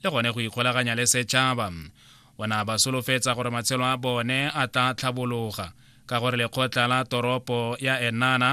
le gone go ikgolaganya le setšhaba o ne a ba solofetsa gore matshelo a bone a tla tlhabologa ka gore lekgotla la toropo ya enana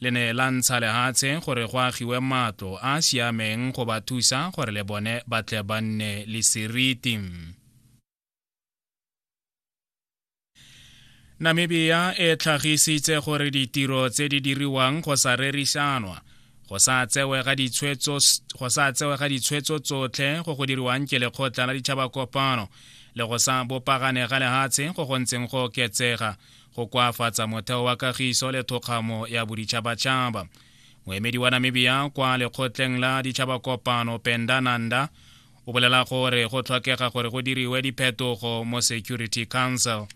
le ne la ntsha lehatshe gore go agiwe matlo a a siameng go ba thusa gore le bone ba tle ba nne le seriti namibia e tlhagisitse gore ditiro tse di diriwang go sa rerišanwa go sa tsewe ga ditshwetso tsotlhe go go diriwang ke lekgotla la ditšhaba kopano le go sa bopagane ga lehatshe go go ntseng go oketsega go koafatsa motheo wa kagiso le thokgamo ya boditšhabatšhaba moemedi wa namibia kwa lekgotleng la ditšhaba kopano pendananda o bolela gore go tlhokega gore go diriwe diphetogo mo security council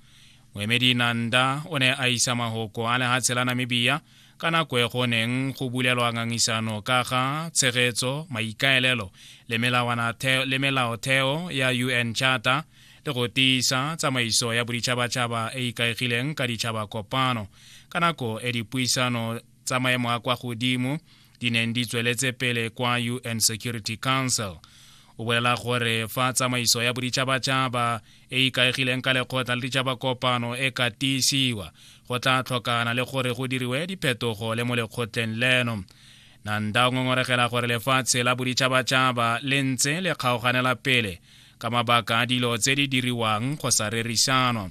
moemedi nanda o ne a isa mahoko a lehatshe la namibia ka nako e go neng go bulelwa ngangisano ka ga tshegetso maikaelelo le melaotheo ya un charter le go tiisa tsamaiso ya boditšhabatšhaba e ikaegileng ka ditšhaba kopano ka nako e dipuisano tsa maemo a kwa godimo di neng di tsweletse pele kwa un security council o bolela gore fa tsamaiso ya boditšhabatšhaba e ikaegileng ka lekgotla le ditšhabakopano e ka tiisiwa go tla tlhokana le gore go diriwe diphetogo le mo lekgotleng leno nanda o ngongoregela gore lefatshe la boditšhabatšhaba le ntse le kgaoganela pele ka mabaka a dilo tse di diriwang go sa rerisanwa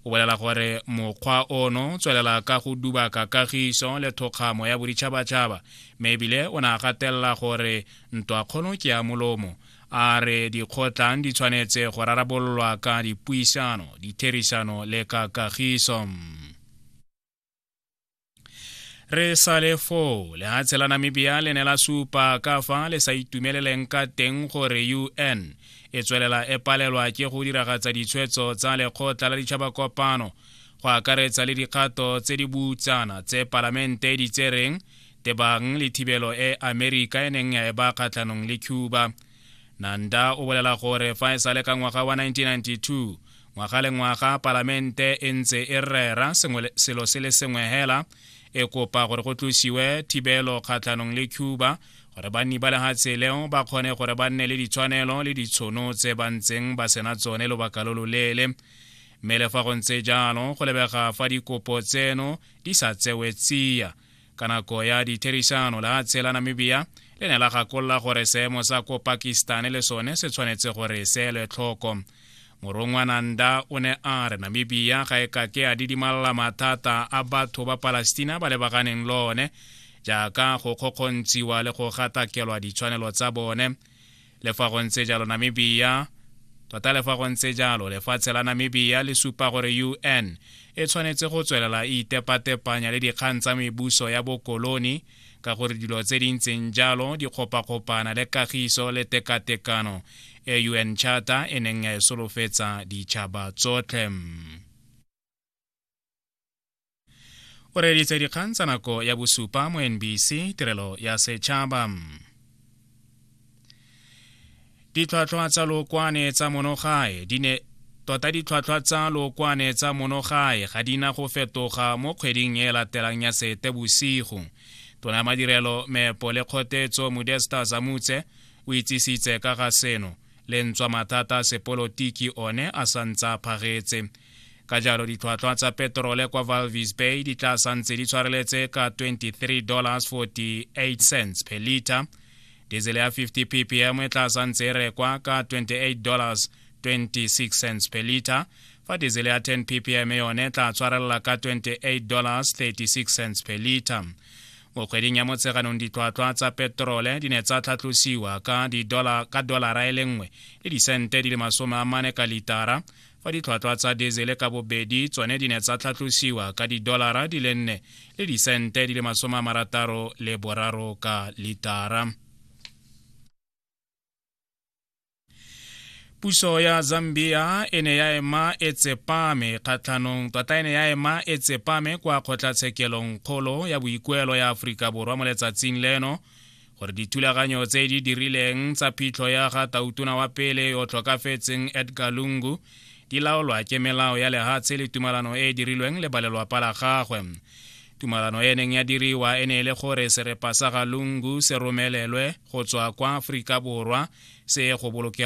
o bolela gore mokgwa ono tswelela ka go dubaka kagiso le thokgamo ya boditšhabatšhaba mme ebile o ne a gatelela gore ntwakgolo ke ya molomo a re dikgotlang di tshwanetse go rarabololwa ka dipuisano ditherisano le ka kagiso re sa le foo lehatshe la namibia le ne la supa ka fa le sa itumeleleng ka teng gore un e tswelela e palelwa ke go diragatsa ditshwetso tsa lekgotla la ditšhaba kopano go akaretsa le dikgato tse di butsana tse palamente e di tsereng tebang le thibelo e amerika e neng ya e ba kgatlhanong le cuba nanda o bolela gore fa e sale ka ngwaga wa 1992 ngwaga le ngwaga palamente e ntse e rera selo se le sengwe hela e kopa gore go tlosiwe thibelo kgatlhanong le cuba gore banni ba lehatshe leo ba kgone gore ba nne le ditshwanelo le ditshono tse ba ntseng ba sena tsone lobaka lo loleele mme le fa go ntse jalo go lebega fa dikopo tseno di sa tsewe tsia ka nako ya ditherisano la tse la namibia le ne la gakolola gore seemo sa ko pakistan le sone se tshwanetse gore seelwe tlhoko morongwa nanda o ne a re namibia ga e ka ke a didimalela mathata a batho ba palestina ba lebaganeng le one jaaka go kgokgontshiwa le go gatakelwa ditshwanelo tsa bone Le fa go ntse jalo Namibia tota le fa go ntse jalo lefatshe la Namibia le supa gore UN e tshwanetse go tswelela e itepatepanya le dikgang tsa mebuso ya bokoloni ka gore dilo tse di ntseng jalo di kgopakgopana le kagiso le tekatekano e UN Charter e neng ya e solofetsa ditšhaba tsotlhe. o reeditse dikgang tsa nako ya bosupa mo nbc tirelo ya setšhaba ditlhwatlhwa tsa lookwane tsa monogae di ne tota ditlhwatlhwa tsa lookwane tsa monogae ga di na go fetoga mo kgweding e latelang ya sete bosigo tona madirelo meepo le kgotetso modesta zamutse o itsisitse ka ga seno le ntswa mathata sepolotiki one a sa ntse a phagetse ka jalo ditlhwatlhwa tsa peterole kwa valvis bay di tla santse di tshwareletse ka 23 dollars 48 cents per liter diesel ya 50 ppm e tla santse e rekwa ka 28 dollars 26 cents per liter fa diesel ya 10 ppm yone e tla tshwarelela ka 28 dollars 36 cents per liter mo kgweding ya motsheganong ditlhwatlhwa tsa peterole di ne tsa tlhatlosiwa ka dolara e le nngwe le disente di le masome a mane ka litara fa ditlhwatlhwa tsa diesele ka bobedi tsone di ne tsa tlhatlosiwa ka didolara di le nne le disente di le masome a marataro le boraro ka litara puso ya zambia e ne ya ema e tsepame kgatlhanong tota e ne ya ema e tsepame kwa kgotlatshekelong kgolo ya boikuelo ya aforika borwa mo letsatsing leno gore dithulaganyo tse di dirileng tsa phitlho ya ga tautona wa pele yo tlhokafetseng edgar lungu di laolwa ke melao ya lehatshe le tumalano e e dirilweng le balelwapa la gagwe tumalano e neng ya diriwa e ne e le gore serepa sa ga lungu se romelelwe go tswa kwa aforika borwa se ye go bolokelwa